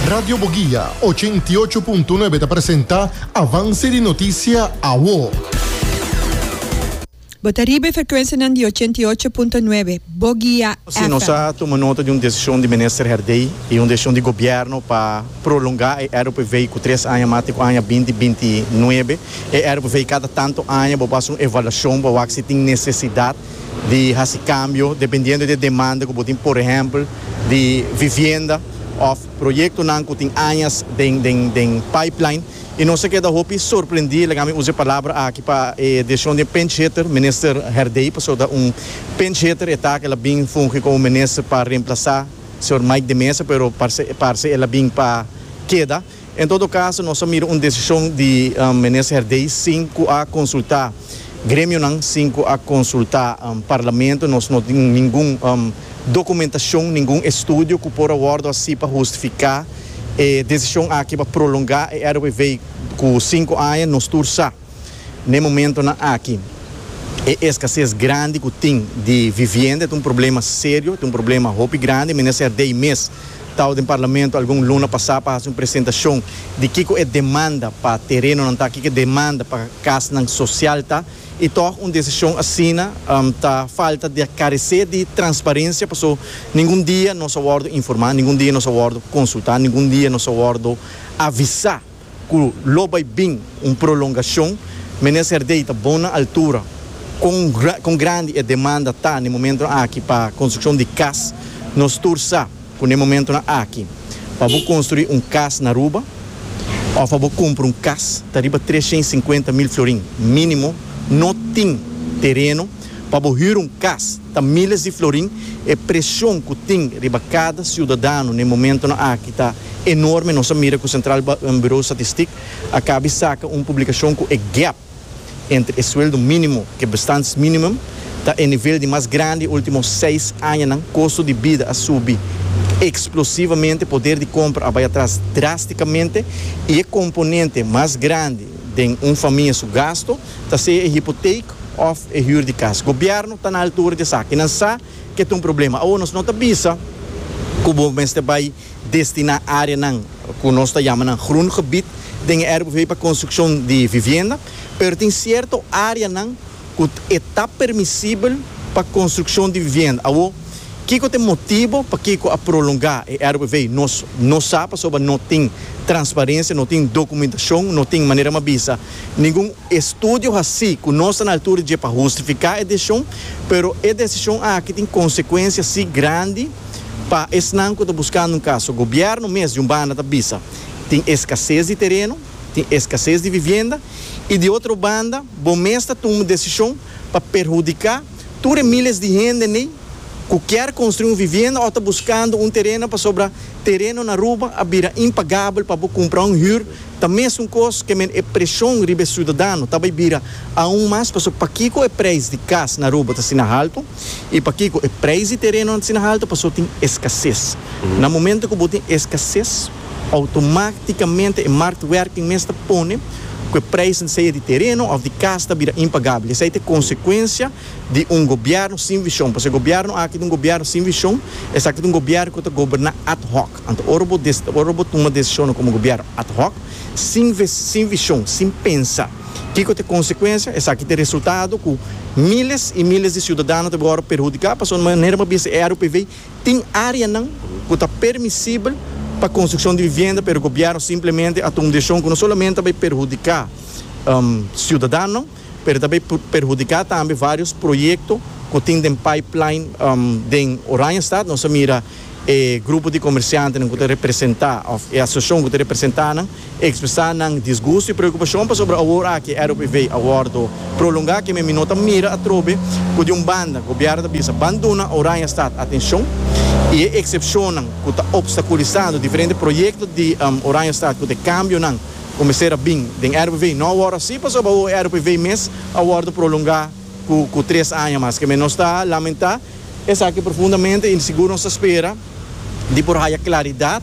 Radio Boguia ochenta i ocho punto nuebe ta presenta Avance di Noticia Awo. Bo ta riba e frecuencianan di ochenta i ocho punto nuebe Boguia Si nos a FM. tuma nota di un decision di Minister Herdey y un decision di Gobierno pa prolonga e RPV cu tres aña mas te cu aña binti binti nuebe. E RPV cada tanto aña bo por haci un evaluacion pa wak si tin necesidad. di hasi kambio dependiendo di e demanda ku bo tin, por ehèmpel di vivienda òf proyektonan ku tin añas den den den pipeline i nos a keda hopi sorprendí, laga mi usa e palabra aki pa e desishon di e pinch hitter Minister Herdey pasobra ta un pinch hitter e ta ku el a bin fungi komo minister pa remplasá señor Mike de Meza pero parse parse el a bin pa keda. En todo caso nos a mira un decision di Menes Herdey sin cu a consulta gremionan, sin cu a consulta Parlamento. Nos no tin ningun documentacion, ningun estudio cu por a wordo haci pa hustifica e decision aki pa prolonga e RWV cu cinco aña. Nos tur sa. N'e momentonan aki e eskases grandi ku tin di vivienda ta un problema serio, ta un problema hopi grandi. Minister Dey mes tau den Parlamento algun luna pasá pa hasi un presentashon di kiko e demanda pa terenonan ta, kiko e demanda pa kasnan sosial ta. I tòg un desishon asina ta falta di a karesé di transparensia paso ningun dia nos a wòrdu informá, ningun dia nos a wòrdu konsultá, ningun dia nos a wòrdu avisá. cu lo bay bin un prolongacion, Minister Dey ta bon na altura con con grandi e demanda ta na e momentonan aki pa construccion di cas. Nos tur sa cu na e momentonan aki pa bo construi un cas na Aruba of pa bo cumpra un cas ta riba trescientocincuenta mil florin minimo, no tin tereno. Pa bo hür un kas ta míles di florin, e presion ku tin riba kada siudadano n'e momentonan aki ta enorme. Nos a mira ku Sentral Buro Statistik a kabi saka un publikashon ku e gèp entre e sueldo mínimo ku e bestaansminimum ta e nivel di mas grandi e último seis añanan. Kosto di bida a subi eksplosivamente, poder di kompra a bai atras drástikamente i e komponente mas grandi den un famia su gasto, ta sea e hipoteek of e huur di cas. Gobierno ta na altura di esaki. Nan sa ke ta un problema. Awor nos no ta bisa cu bo mester bay destina areanan cu nos ta yama nan groen gebied den e RBV pa construccion di vivienda, pero tin cierto areanan cu e ta permisibel pa construccion di vivienda. Awor, kico ta e motibo pakico a prolonga e RBV? Nos no sa pasobra no tin transparencia, no tin documentacion, no tin manera m'a bisa. Ningun estudio haci cu nos ta na altura dje pa hustifica e decision, pero e decision aki tin consecuencia si grandi pa esnan cu ta buscando un caso. Gobierno mes di un banda ta bisa tin escasez di tereno, tin escasez di vivienda y di otro banda bo mes ta tuma decision pa perhudica. Tur e miles di hende n'ey cu kier construi un vivienda o ta buscando un tereno pasobra tereno na Aruba a bira impagabel pa bo cumpra un huur ta mesun cos ke men e presion riba e ciudadano ta bay bira aun mas pasobra pakico e prijs di cas na Aruba t'asina halto y pakico e prijs di tereno n'asina halto pasobra tin escases na momento cu bo tin escases Automáticamente e marktwerking mes ta pone cu e prijzen sea di tereno of di cas ta bira impagabel. Esei ta e consecuencia di un gobierno sin vision. Pasobra e gobierno aki ta un gobierno sin vision. Esaki ta un gobierno cu ta goberna ad hoc. Anto ora bo dec, ora bo tuma decisionan como gobierno ad hoc, sin ves, sin vision, sin pensa kico ta e consecuencia, esaki ta e resultado cu miles y miles di ciudadano ta bai ora perhudica pasobra manera bo a bisa e RUPV, Tin áreanan ku ta permisibel pa konstrukshon di vivienda pero gobièrnu simplemente a tuma un desishon ku no solamente a bai perhudiká siudadannan pero ta bai perhudiká tambe vários proyekto ku tin den pipeline den Oranjestad. Nos a mira e grupo di komersiantenan ku ta representá òf e asosiashon ku ta representá nan E ekspresá nan disgusto i preokupashon pasobra awor aki e ROPV a wòrdu prolongá kende mi no ta mira atrobe ku di un banda gobièrnu ta bisa ban duna Oranjestad atenshon i e eksepshonnan ku ta opstakulisando diferente proyekto di Oranjestad ku ta e kambionan ku mester a bin den ROPV no a wòrdu asi pasobra awor e ROPV mes a wòrdu prolongá ku ku tres aña mas kende nos ta lamentá esaki profundamente i sigur nos ta spera di por haya klaridat.